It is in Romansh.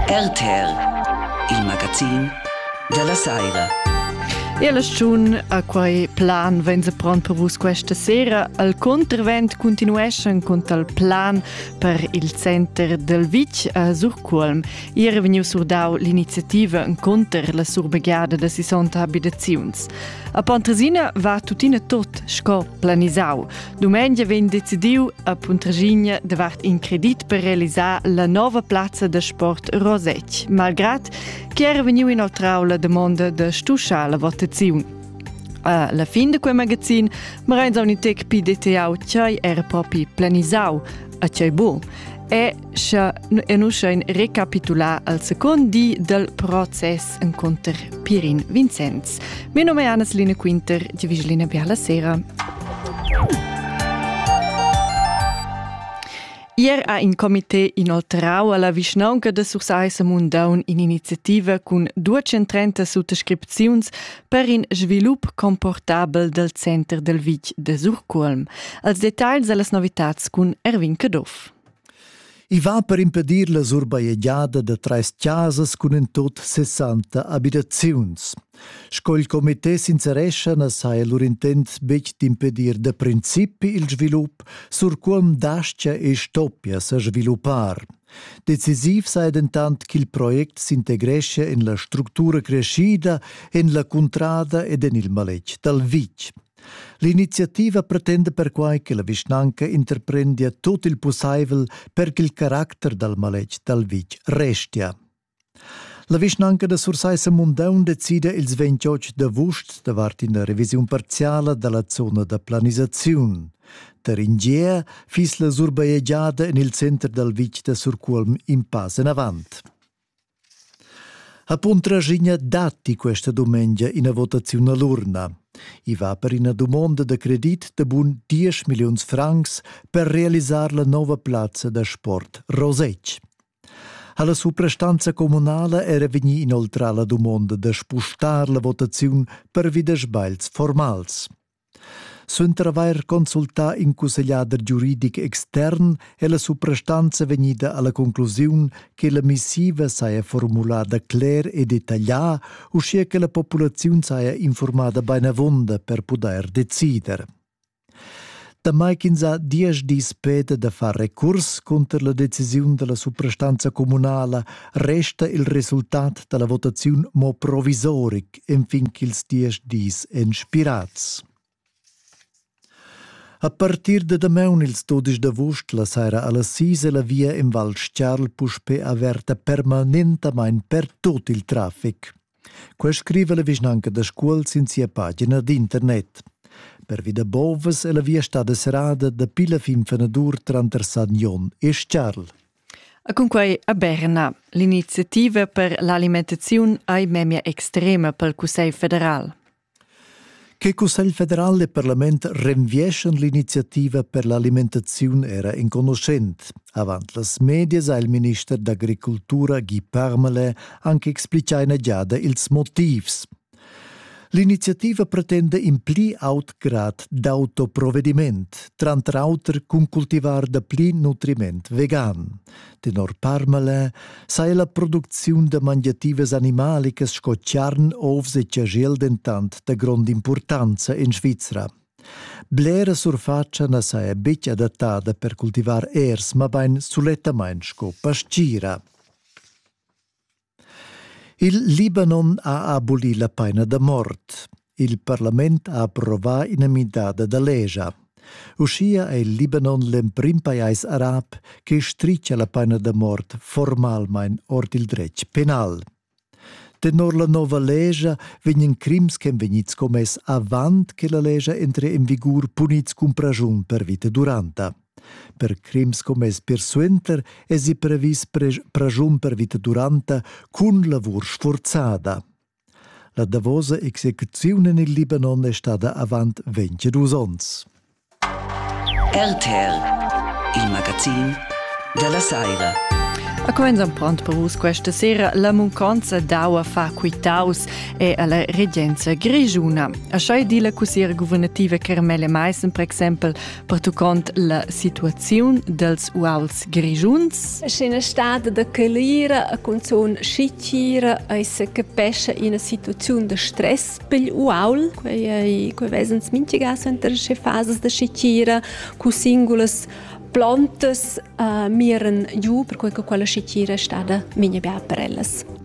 RTL, il magazin della saira. E la stagiun a quei plan vegn se pron per vus questa sera. Al contravent continueschan con tal plan per il center del Vic a Surculm. Ier è vegniu surdau l'iniziativa contro la surbegiada da 60 abitaziuns. A Pontresina va tuttina tot sco planisau. Dumengia vegn decidiu a Puntraschigna davart in credit per realisar la nova plazza da sport Rosec, malgrad che era vegniu inoltrau la damonda da stuschar la votaziun. A la fin de quel magazin Marein Zaunitec PDTA tgei era propi planisau, a tgei bu. E scha enuscha in recapitular al second di del process encontr Pirin Vincenz. Mio nome è Anna-Line Quinter, ti vigiline per la sera. Ier ha in comité inoltrau alla vischnaunca de Sursaissa Mundaun in'iniziativa cun 230 suttascripziuns per in svilup comportabel del center del vitg de Surculm. Als dettagls e las novitats cun Erwin Caduff. I va per impedir la surbajegiada da trais chasas cun in tut sessanta abitaziuns. Sco il comité sincerescha na saja lur intent betg d'impedir da principi il svilup, sur quom dastia e stoppia sa sviluppar. Decisiv sai dentant ch'il project s'integreschia en la structura creschida, en la cuntrada ed en il maletg dal vitg. L'iniziativa pretenda perquai che la vischnanca interprendia tut il pussaivel per ch'il caracter dal maletg dal vitg restia. La vischnanca da Sursaissa Mundaun decida ils 28 d'avust davart ina revisiun parziala da la zona da planisaziun. Per in gia fiss la surbajegiada en il center dal vitg da Surcuolm in pass enavant. Ha Puntraschigna datti questa dumengia ina votaziun all'urna? I va per ina dumonda da credit da bun 10 milliuns francs per realisar la nova plazza da sport Rosetsch. Ha la suprastanza communala era vegnì inoltrà la dumonda da spustar la votaziun per vidas sbails formals? Suenter avair consultà in cussegliader giuridic extern è la suprastanza vegnida alla conclusiun che la missiva saja formulada cler e detaglià, uschia che la populaziun saja informada beinavonda per pudair decider. Damai ch'ins ha diesch dis peda da far recurs cunter la decisiun dalla suprastanza communala, resta il resultat dalla votaziun mo provisoric, enfin ch'ils diesch dis èn spirads. A partir da damaun ils dudisch d'avust la saira a las sis è la via in Val Stiarl puspe averta permanentamain per tut il traffic. Quai scrive la vischnanca da Scuol sin sia pagina d'internet. Pervi da bovas è la via stada serrada dapi la fin fenadur tranter San Jon e Stiarl. E cunquei a Berna. L'iniziativa per l'alimentaziun ei memia extrema pel Cussegl federal. Che Cussegl federal e parlament renvieschan l'iniziativa per l'alimentaziun era enconuschent. Avant las medias ha il minister d'agricultura Guy Parmelin anche explicà ina giada ils motivs. L'iniziativa pretenda in pli aut grad d'autoprovediment, tranter auter cun cultivar da pli nutriment vegan. Tenor Parmale sa ella producziun da mangiativas animalicas sco charn, ovs e chajel dentant da grond'impurtanza en Svizra. Blera surfatscha na sa è betg adattada per cultivar ers, mabain sulettamain sco pastgira. Il Libanon ha abolì la paina da mort. Il parlament ha approvà ina midada da legia. Uschia è il Libanon l'emprim pajais arab che stritga la paina da mort formalmain ord il dretg penal. Tenor la nova legia vegnan crims che vegnids commess avant che la legia entre en vigur punids cun praschun per vita duranta. Per crims commess persuenter èsi previs praschun per vita duranta cun lavur sfurzada. La davosa execuziun en il Libanon è stada avant 22 onns. RTL, il magazin della Saira. A comenzan pront per vus questa sera la munconza d'aua fa quitaus e alla regenza grigiuna. A schai di la cussiera guvernativa Carmele Meissen, per exempel, pertuccont la situaziun dels uals grischuns. Sch'ina stada da calira a cunzun schichira eis capescha ina situaziun da stress pel uaul, quei ei quei vesens minchigas enter sche fasas da schichira, cu singulas plantas uh, miran giu, per quei che quella schichira è stada migna bia per ellas.